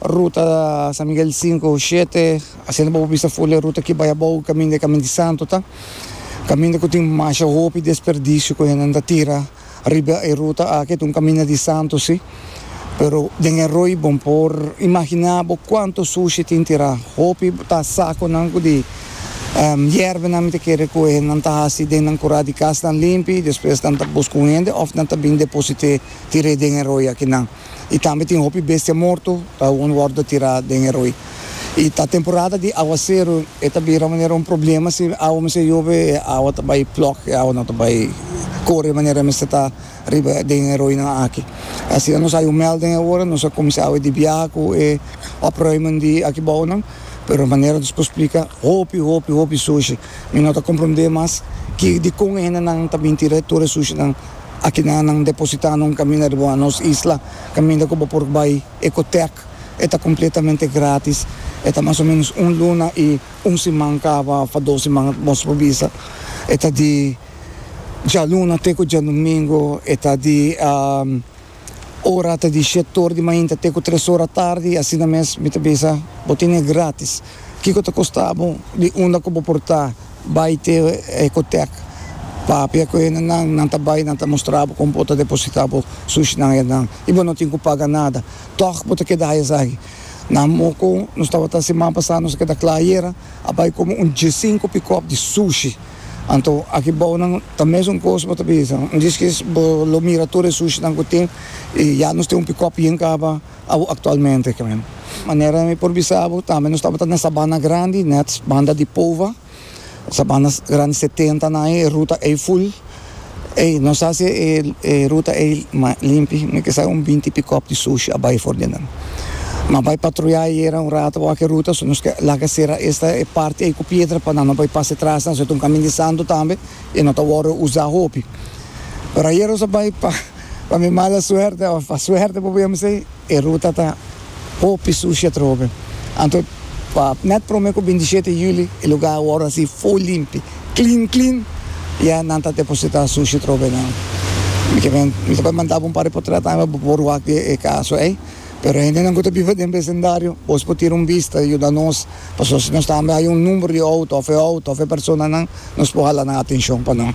Ruta San Miguel sinku, shete, Hasienda Bobo Bista Ful e ruta ki bai abou kaminda e Kaminda di Santu ta kaminda ku tin masha hopi desperdisio ku hendenan ta tira riba e ruta aki, ta un kaminda di santu si, pero den e roi bo por imaginá bo kuantu sushi tin tirá, hopi ta sakunan ku di yerbanan mi ta kere ku hendenan ta hasi den nan kurá di kas nan limpi, despues nan ta buska un hende òf nan ta bin deposit'é tir'é den e roi akinan. y tambe tin hopi bestia morto ta un wordo tira den e roi. Y ta temporada di aguacero, e ta bira manera un problema si awa mester yobe, e awa ta bay plok, e awa no ta bay core manera mester ta riba den e roinan aki. Asina nos hay un melding awor, nos a cuminsa awe di biaha cu e opruimen di aki bounan, pero manera nos por splica hopi, hopi, hopi sushi. Mi no ta comprende mas ki, dicon e hendenan ta bin tira tur e sushinan. Aki nan nan depositá nan kaminda riba un nos isla, kaminda ku bo por bai Ecotec. E ta kompletamente grátis. E ta mas o ménos un luna i un siman kaba òf dos siman mos por bisa. E ta di djaluna te ku djalnumingu. E ta di. ora ta di shete or di mainta te ku tres ora tardi, asina mes mi ta bisa bo tin e gratis. Kiko ta kosta bo di unda ku bo por ta bai te Ecotech? Papia ku hende nan, nan ta bai nan ta mustra bo kon bo ta deposita bo sushi nan hei nan i bo no tin ku paga nada. Tog bo ta keda hei esaki. Na Moko nos tabata siman pasá nos a keda kla ayera a bai komo un diesinku pikòp di sushi. Anto aki bounan ta mes un kos bo ta bisa, un diskis bo lo mira tur e sushinan ku tin i ya nos tin un pikòp bien kaba awo aktualmente. Manera mi por bisa bo tambe nos tabata na e sabana grandi nèt banda di Pova, sabana grandi setentan ai e ruta ei ful. Ey, nos a haci e ruta ey limpi, mi kisa un binti pickup di sushi a bay for di nan. Nos a bay patruya ayera un rato bou aki e ruta, so nos ke laga cera esta e parti ey cu piedra pa nan no bay pasa tras nan, so e ta un camin di santo tambe y no ta wordo uza hopi. Pero ayera nos a bay pa mi mala suerte of pa suerte, por por yama esey, e ruta ta Hopi sushi a troho ben. Anto pa net prome ku bindisiete juli e luga a wòrdu así full limpi, klin klin, ya nan ta depositá sushi troho ben nan. Mi ke ben, mi ta por manda bo un par di potrèt awe bo por wak di e kaso ei. Pero hendenan ku ta biba den besendario, bos por tira un bista i yuda nos, pasobra si nos tambe haya un numbero di outo òf e outo òf e personanan, nos por hala nan atenshon pa nan.